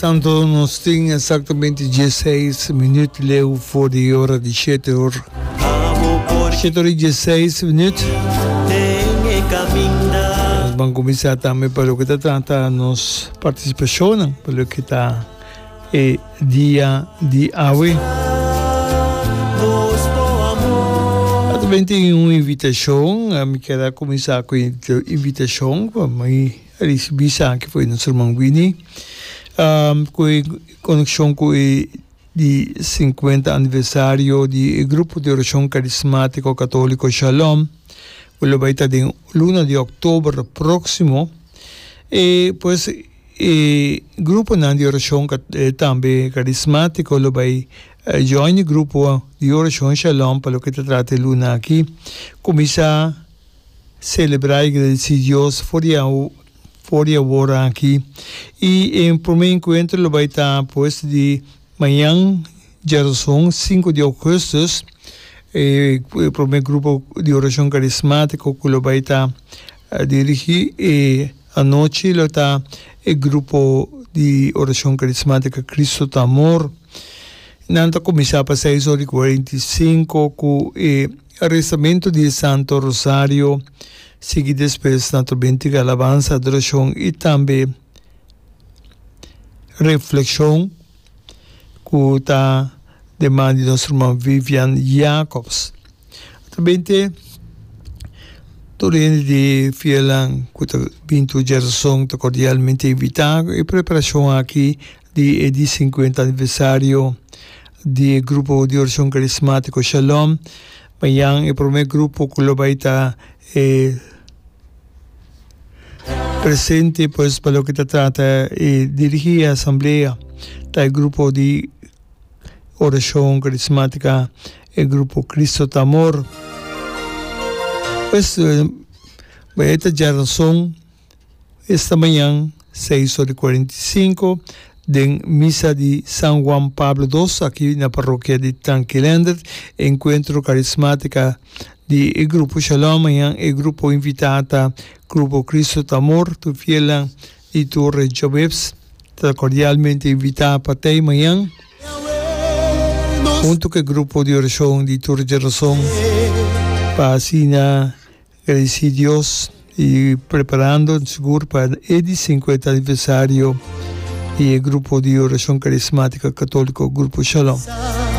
Tanto nos tin exactamente 16 minuut leu voor de hora de siete hoor. Siete hoor y 16 minuut. Nos van comenzar también para lo que está trata nos participación, para lo que está e dia di awe. Atamente un invitacion, mi keda comenzar cu invitacion, pa mi a ricibi sa ki fo'i nos herman Winnie cu e coneccion cu e di cincuenta aniversario di e grupo di oracion carismatico catolico Shalom cu lo bai ta den luna di october proximo e pues e gruponan di oracion tambe carismatico lo bai join e grupo di oracion Shalom pa loke ta trata e luna aki cuminsa Selebrá i gradisí Dios for di awo for di awor aki. I e promé enkuentro lo bai ta pues di mañan djerason sinku di ougùstùs. E promé grupo di orashon karismátiko ku lo bai ta dirigí e anochi lo ta e grupo di orashon karismátika Kristu ta amor. Nan ta kuminsá pa seis ora i kuarenta i sinku ku e. Rezamentu di e Santo Rosario, sigui despues na tur bini tigi alabansa, adorashon i tambe reflekshon ku ta den man di nos ruman Vivian Jacobs. Ta binte tur hende di fielnan ku ta bintu Jèrson ta kordialmente invitá. E preparashon aki di e di sinkuenta aniversario di e grupo di oracion carismatico Shalom, Bayan e prome grupo cu lo bay ta e presente pues pa loke ta trata e dirigi e asamblea ta e grupo di oracion carismatica e grupo Cristo ta amor, pues bay e ta dja rason. Esta mañan, seis ora i kuarenta i sinku, den misa di San Juan Pablo Dos aki na parokia di Tanquilender, enkuentro karismátika di e grupo Shalom. Mañan e grupo invitá ta Grupo Kristu ta Amor. Tur fielnan di tur regionbebs ta kordialmente invitá pa tei mañan huntu ku e grupo di orashon di tur djenason pa asina E di si Dios i preparando sigur pa e di sinkuenta aniversario di e grupo di oracion carismático católico Grupo Shalom.